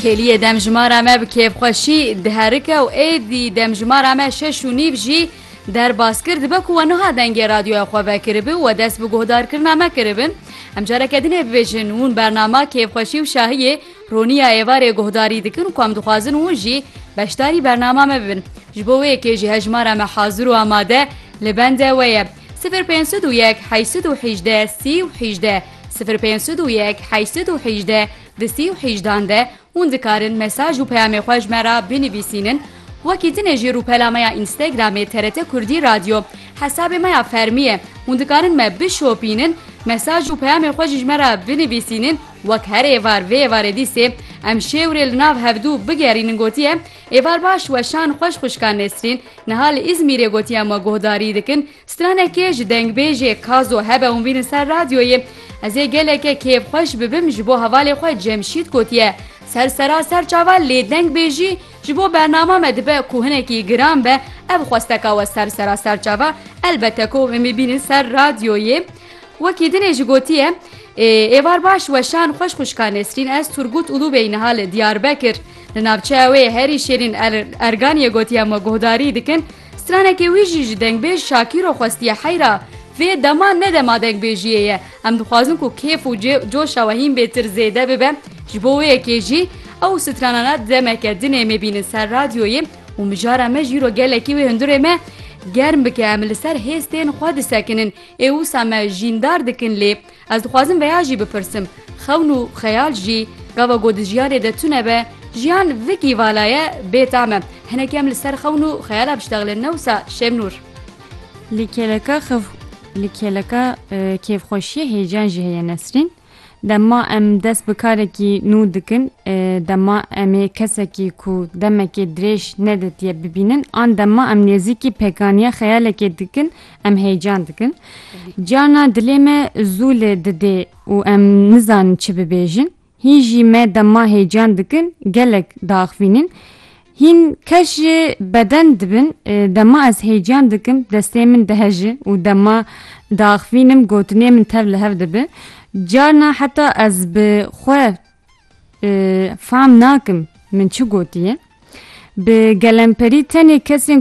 Kêliyê demjimara me bi kêfxweşî diherike û êdî demjimara me şeş û nîv jî derbas kir dibe ku we niha dengê radyoya xwe vekiribi û we dest bi guhdarkirina me kiribin. Em careke din ê bibêjin hûn bernama kêfxweşî û şahiyê Roniya êvarê guhdarî dikin û ku em dixwazin hûn jî beşdarî bernama me bibin. Ji bo wê yekê jî hejmara me hazir û amade li bende we ye. Sifir pênc sed û yek heşt sed û hîjdeh sî û hîjdeh. Sifir pênc sed û yek heşt sed û hejdeh di sî û hejdan de hûn dikarin mesaj û peyamê xwe ji me re binivîsînin, wekî tine jî rûpela me ya Instagramê TRT Kurdî Radyo hesabê me ya fermî ye, hûn dikarin me bişopînin, mesaj û peyamê xwe jî ji me re binivîsînin wek her êvar vê êvarê dîsê em şêwirê li nav hevdû bigerînin gotiye, Êvar baş weşan xweş xwişka Nesrîn niha li Îzmîrê gotiye me guhdarî dikin, Stranekê ji dengbêjê Kazo hebe û vînin ser radyoyê, Ez ê geleke kêfxweş bibim ji bo hevalê xwe Cemşîd gotiye. Ser sera ser çavan lê dengbêjî ji bo bernama me dibe ku hinekî giran be ev xwesteka we ser sera ser çava elbete ku em ê bînin ser radyoyê. Wekî dinê jî gotiye Ê êvar baş weşan xweş xwişka Nesrîn ez Turgut Ulubey niha li Diyarbekir li navçeya wê yê herî şêrîn Erganiyê gotiye me guhdarî dikin Stranekê wî jî ji dengbêj Şakîro xwestiye heyra, Vê dema ne dema dengbêjiyê ye. Em dixwazin ku kêf û coşa we hîn bêtir zêde bibe. Ji bo wê yekê jî ew stranana demeke din ê mêbînin ser radyoyê û mijara me jî îro gelekî wê hundirê me germ bike. Em li ser hêstên xwe disekinin. Ê wisa me jîndar dikin lê Ez dixwazim veya jî bipirsim, xewn û xeyal jî gava ku di jiyarê de tune be, jiyan vikî vala ye, bê tam e. Hinek em li ser xewn û xeyala biştexlin ne wisa Şemnûr? Li kêleka xew li kêleka kêfxweşiyê hêcan jî heye Nesrîn. Dema em dest bi karekî nû dikin, dema em ê kesekî ku demekê dirêj nedîtiye bibînin an dema em nêzîkî pêkaniya xeyalekê dikin, Em heyecan dikin. Cana dilê me zû lê didê û em nizanin çi bibêjin. Hîn jî me dema heyecan dikin gelek diaxivînin. Hîn kes jî beden dibin e, dema ez heyecan dikim destê min diheji û dema diaxivînim gotinê min tev li hev dibi. Carna heta ez bi xwe e, fam nakim min çi gotiye. Bi gelemperî tenê kesên